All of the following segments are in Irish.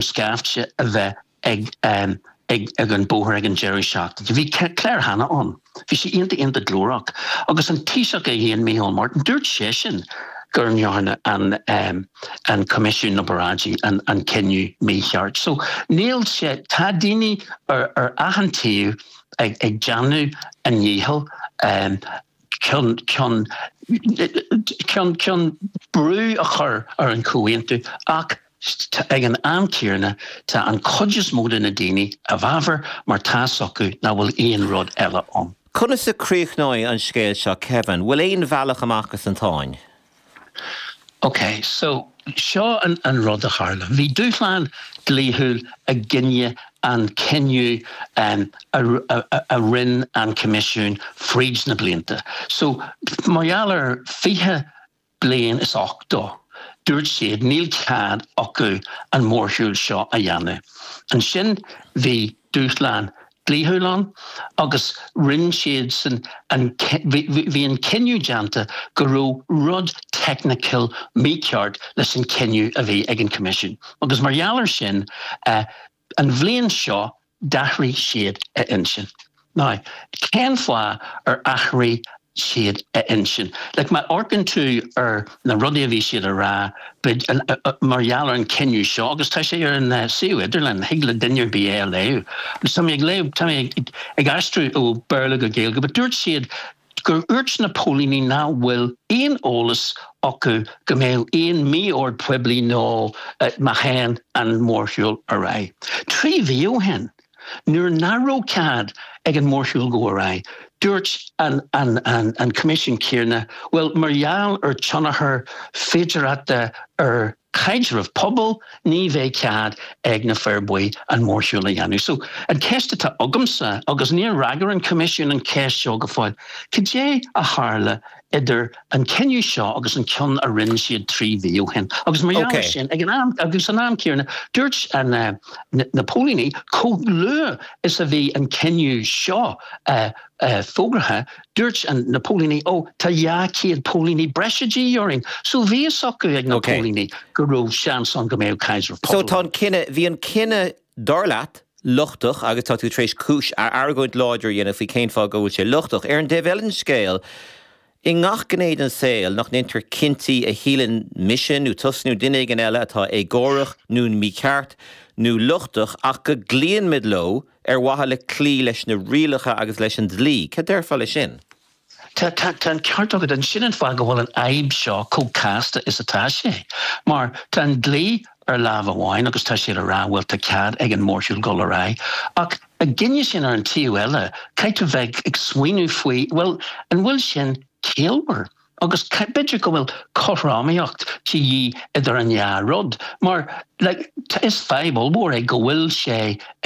scaifte a bheith ag ag an bóthar ag an deireadh seachtaine. Bhí Claire Hanna ann. Bhí sí iontach iontach glórach agus an Taoiseach é fhéin Micheál Martin, dúirt seisean gur ndearna an an Coimisiún na bParáidí an an cinneadh mícheart. So níl sé tá daoine ar ar achan taobh ag ag déanamh a ndícheall chun chun chun brú a chur ar an Chomhaontú ach tá, ag an am céarna tá an cuid is mó de na daoine i bhfabhar mar tá 's acu nach bhfuil aon rud eile ann. Conas a críochnóidh an scéal seo Kevin? Bhfuil aon bhealach amach as an tsáinn? OK, so seo an rud a tharla. Bhí dúshlán dlíthiúil i gcoinne an cinneadh a rinne an Coimisiún fríd na blianta. So, mar gheall ar 20. bliain is ochtó, dúirt siad níl cead acu an mórshiúl seo a dhéanamh. Ansin bhí dúshlán dlíthiúil ann agus rinne siadsan an, bhí an cinneadh déanta go raibh rud technical mícheart leis an cinneadh a bhí ag an Choimisiún agus mar gheall ar sin An bhliain seo d'athraigh siad a intinn. Now, cén fáth ar athraigh siad a intinn? Like, má amharcann tú ar na rudaí a bhí siad a rá mar gheall ar an cinneadh seo, agus tá sé ar an suíomh idirlín, thig le duine ar bith é a léamh. Agus tá mé ag léamh, tá mé ag aistriú ó Béarla go Gaeilge, but dúirt siad, gur dhúirt na póilíní nach bhfuil aon eolas acu go mbeadh aon mí-ord poiblí nó má théann an mórshiúl ar aghaidh. Trí mhí ó shin, nuair nach raibh cead ag an mórshiúl gabháil ar aghaidh, dúirt an Coimisiún céarna, bhuel, mar gheall ar tionchar féidearthachta ar. caidreamh pobail, ní bheidh cead ag na Fir Bhuí an mórshiúl a dhéanamh. So, an ceist atá agamsa, agus níor fhreagair an Coimisiún an cheist seo go fóill, cad é a tharla idir an cinneadh seo agus an ceann a rinne siad trí mhí ó shin? Agus mar gheall ar sin, ag an am, agus san am céarna, dúirt na na póilíní, chomh luath is a bhí an cinneadh seo fógraithe, Dúirt na póilíní, Ó, tá dhá chéad póilíní breise de dhíth orainn. So bhí fhios acu ag na póilíní go raibh seans ann go mbeadh Kaiser Pop. So tá an cinneadh, bhí an cinneadh, dar leat, lochtach agus tá tú tar éis cúis, argóint láidir a dhéanamh faoi cén fáth go bhfuil sé lochtach. Ar an dtaobh eile den scéal, i ngach gné den saol nach ndéantar cinntí a shíleann mise nó tusa nó duine éigin eile atá éagórach nó mícheart nó lochtach ach go gcloíonn muid leo, Ar mhaithe le cloí leis na rialacha agus leis an dlí. Cad déarfá le sin? Tá an ceart agat ann. Sin an fáth go bhfuil an fhadhb seo chomh casta is atá sé. Mar tá an dlí ar lámh amháin agus tá siad a rá, bhuel, tá cead ag an mórshiúl dul ar aghaidh. Ach ag an am céanna ar an taobh eile, caithfidh tú bheith ag smaoineamh faoi, bhuel, an bhfuil sin ciallmhar? Agus b'fhéidir go bhfuil cothromaíocht de dhíth idir an dhá rud, mar like is fadhb ollmhór é go bhfuil sé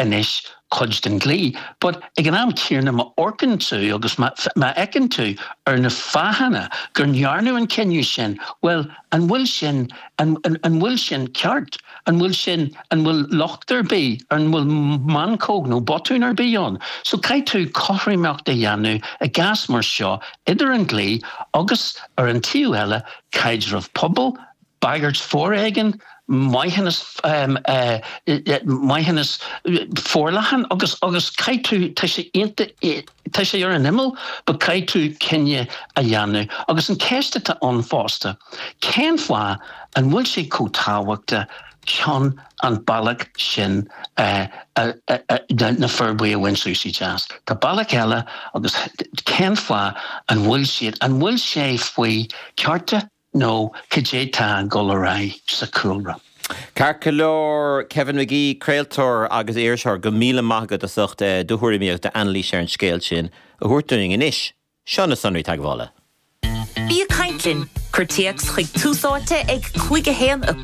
anois cuid den dlí, but ag an am céanna má amharcann tú agus má fhéachann tú ar na fáthanna gur ndearnadh an cinneadh sin, bhuel an bhfuil sin, an bhfuil sin ceart? An bhfuil sin, an bhfuil locht ar bith, an bhfuil meancóg nó botún ar bith ann? So caithfidh tú cothromaíocht a dhéanamh i gcás mar seo idir an dlí agus, ar an taobh eile, caidreamh pobail, bagairt foréigin, maithiúnas, maithiúnas forleathan agus, agus caithfidh tú, tá sé iontach, Tá sé ar an imeall, but caithfidh tú cinneadh a dhéanamh. Agus an ceist atá ann fosta, cén fáth an bhfuil sé chomh tábhachta cun an bealach sin na Fir Bhuí a bhaint suas i gceist? Tá bealach eile agus cén fáth an bhfuil siad, an bhfuil sé faoi cearta? nó cad é tá ag dul ar aghaidh sa chúlra. Ceart go leor, Kevin Magee, craoltóir agus iriseoir, go míle maith agat as ucht do thuairimíocht, d'anailís ar an scéal sin a thabhairt dúinn. Anois, seo na sonraí teagmhála. Bí ag caint linn! Cuir téacs chuig Tús Áite ag 5 1 1.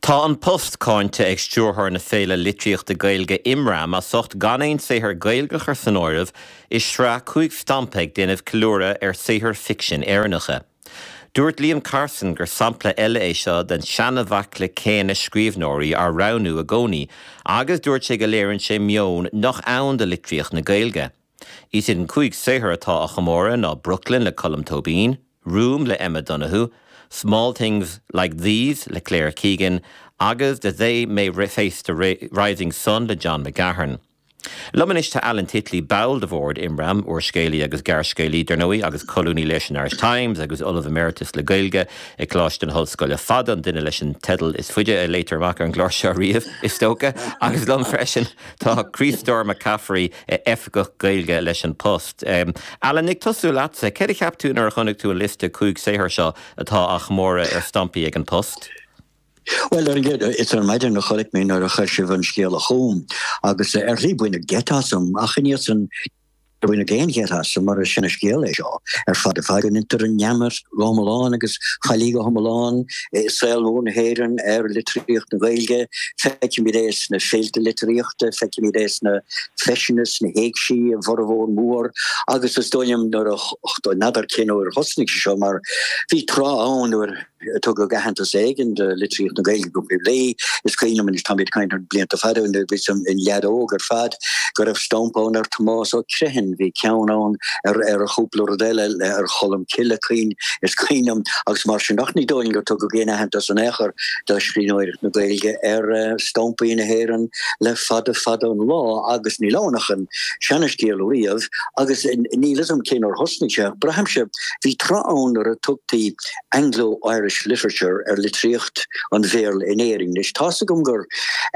Tá An Post cáinte ag Stiúrthóir na Féile Litríochta Gaeilge Imram as ucht gan aon saothar Gaeilge a chur san áireamh i sraith cúig stampa ag déanamh ceiliúradh ar saothair ficsin Éireannacha. Dúirt Liam Carson gur sampla eile é seo den seanbhaicle céanna scríobhneoirí á roghnú i gcónaí agus dúirt sé go léirionn sé meon nach ann do litríocht na Gaeilge. Is iad an cúig saothar atá á chomóradh ná Brooklyn le Colm Tóibín, Room le Emma Donoghue, Small Things Like These le Claire Keegan agus The They May Face the Rising Sun le John McGahern. Liom anois tá Alan Titley, ball de bhord Imram, úrscéalaí agus gearrscéalaí, dar ndóigh, agus colúnaí leis an Irish Times agus Ollamh Emeritus le Gaeilge ag Coláiste na hOllscoile. An duine leis an teideal is faide a léadh amach ar an gclár seo riamh, is dócha! Agus liom freisin tá Críostóir Mac Cafraidh, oifigeach Gaeilge leis An Post. Alan, ag tosú leatsa, céard a cheap tú nuair a chonaic tú an liosta cúig saothar seo atá á chomóradh ar stampaí ag An Post? Bhuel, ar an gcéad, is ar maidin a chonaic mé nuair a chuir sibh an scéala chugam agus ar shlí baineadh geit asam ach i ndiaidh san, níor baineadh aon gheit asam mar is seanscéal é seo ar fad ar fad go ndeintear an neamart go hiomlán agus faillí go hiomlán i saol mór na hÉireann ar litríocht na Gaeilge. Feicimid é sna féilte litríochta, feicimid é sna féiseanna, sna héigsí, i bhformhór mór agus is dóigh liom nuair a, n'fheadar cén uair a thosnaigh sé seo mar bhí tráth ann nuair a tugadh aitheantas éigin do litríocht na Gaeilge go poiblí, is cuimhin liom anois, tá mé ag caint ar blianta fada ó nuair a bhíos i leaid óg ar fad, go raibh stamp ann ar Thomás Ó Criomhthain, bhí ceann ann ar chúpla rud eile ar Cholm Cille cuimhin is cuimhin liom agus mar sin ach ní dóigh liom gur tugadh aon aitheantas in aon chor do scríbhneoireacht na Gaeilge ar stampaí na hÉireann le fada fada an lá agus níl ann ach an seanscéal riamh agus níl fhios a'm cén uair a thosnaigh sé ach braithimse bhí tráth ann nuair a tugtaí Anglo-Irish Literature ar litríocht an Bhéarla in Éirinn. Anois tá's agam gur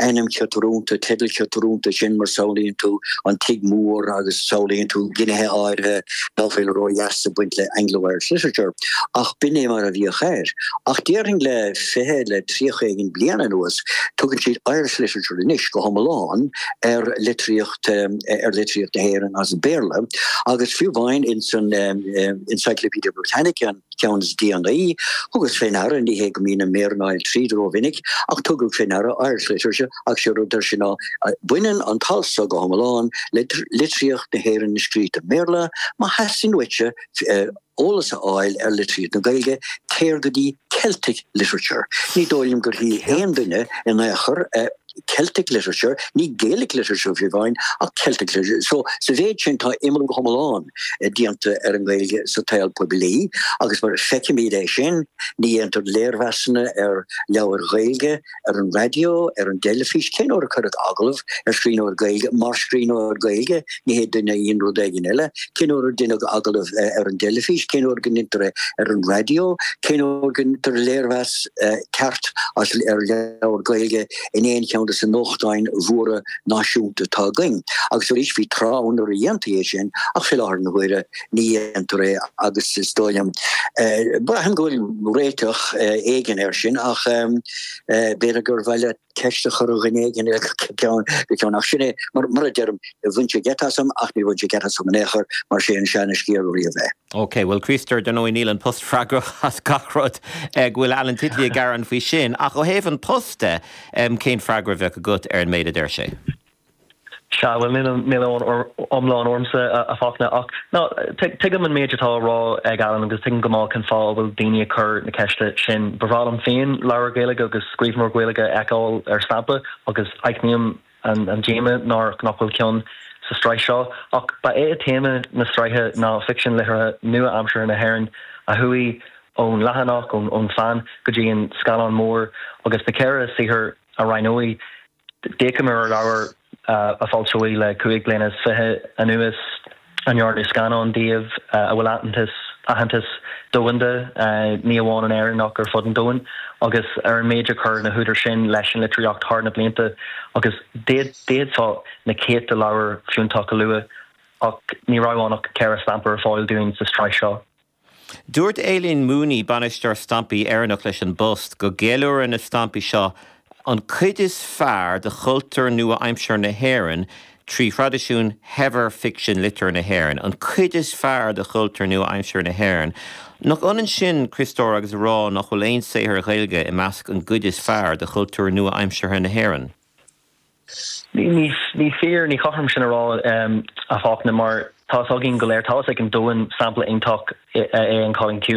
ainm ciotrúnta, teideal ciotrúnta é sin mar samhlaíonn tú an tigh mór agus samhlaíonn tú gnéithe áirithe ná féadfá a rá iad a bheith ag baint le Anglo-Irish Literature, ach b'in é mar a bhíodh ar. Ach déarfainn le fiche le tríocha éigin bliana anuas, tugann siad Irish Literature anois go hiomlán ar litríocht ar litríocht na hÉireann as Béarla, agus fiú amháin insan Encyclopedia Britannica, an. ceann is déanaí. Thugas fé ndeara, ní hé go mbínn ag méirínteáil tríd ró-mhinic, ach tugadh fé ndeara Irish literature agus sé rud atá ansan baineann an t-alt so go hiomlán le litríocht na hÉireann atá scríofa i mBéarla. Má theastaíonn uaitse eolas a fháil ar litríocht na Gaeilge, téir go dtí Celtic literature. Ní dóigh liom go dtéann aon duine in aon chor Celtic literature, ní Gaelic literature fiú amháin ach Celtic literature. So sa mhéid sin tá imeallú go hiomlán eh, déanta ar an Gaeilge sa tsaol poiblí agus mar feicimid é sin ní dhéantar léirmheasanna ar leabhair Ghaeilge ar an raidió, ar an dteilifís, cén uair a cuireadh agallamh ar scríbhneoir Gaeilge mar scríbhneoir Gaeilge ní hé duine a dhein rud éigin eile, cén uair a deineadh agallamh ar an dteilifís, cén uair go ndeintear é ar an raidió, cén uair go ndeintear léirmheas ceart as ar leabhar Gaeilge in aon cheann de sa nuachtáin mhóra náisiúnta atá againn. Agus arís bhí tráth ann nuair a dhéantaí é sin ach fé láthair na huaire ní dhéantar é agus is dóigh liom, braithim go bhfuil réiteach éigin air sin ach b'fhéidir gur mhaith leat ceist a chur ar dhuine éigin eile go ceann ach sin é mar a deirim, bhain sé geit asam ach níor bhain sé geit asam in aon chor mar sé an seanascéal riamh é. Ok, bhuel Críostóir ar ndóigh níl An Post freagrach as gach rud go bhfuil Alan Titley ag gearán faoi sin ach ó thaobh An Post de cén freagra a bheadh agat ar an méid a deir sé? Sea, bhuel, níl aon iomrall ormsa, a Fachtna, ach ná, tuigim an méid atá á rá ag Alan agus tuigim go maith cén fáth a bhfuil daoine ag cur na ceiste sin. Ba bhreá liom féin leabhar Gaeilge agus scríbhneoir Gaeilge a fheiceáil ar stampa agus aithním an díoma nár nach bhfuil ceann sa sraith seo. Ach ba é téama na sraithe ná ficsean liteartha nua-aimseartha na hÉireann a chuaigh ón leathanach, ón pheann, go dtí an scáileán mór agus na ceithre saothar a roghnaíodh. D'fhéachamar ar leabhair a foilsíodh le cúig bliana is fiche anuas, a ndearnadh scannáin díobh, a bhfuil aitheantas, aitheantas domhanda, ní amháin in Éirinn ach ar fud an domhain, agus ar an méid a chuir na húdair sin leis an litríocht thar na blianta. Agus d'fhéadfá na céadta leabhar fiúntach a lua, ach ní raibh ann ach ceithre stampa ar fáil dúinn sa tsraith seo. Dúirt Aileen Mooney, Bainisteoir Stampaí Éireannacha leis an bPost, go gceiliúrann na stampaí seo an cuid is fearr de chultúr nua-aimseartha na hÉireann trí thraidisiún shaibhir ficsean liteartha na hÉireann, an cuid is fearr de chultúr nua-aimseartha na hÉireann. Nach ionann sin, a Chríostóir, agus a rá nach bhfuil aon saothar Ghaeilge i measc an gcuid is fearr de chultúr nua-aimseartha na hÉireann? Ní fíor, ní cothrom sin a rá, a Fachtna, mar tá's againn go léir, tá's ag an domhan, sampla iontach é an Cailín Ciúin.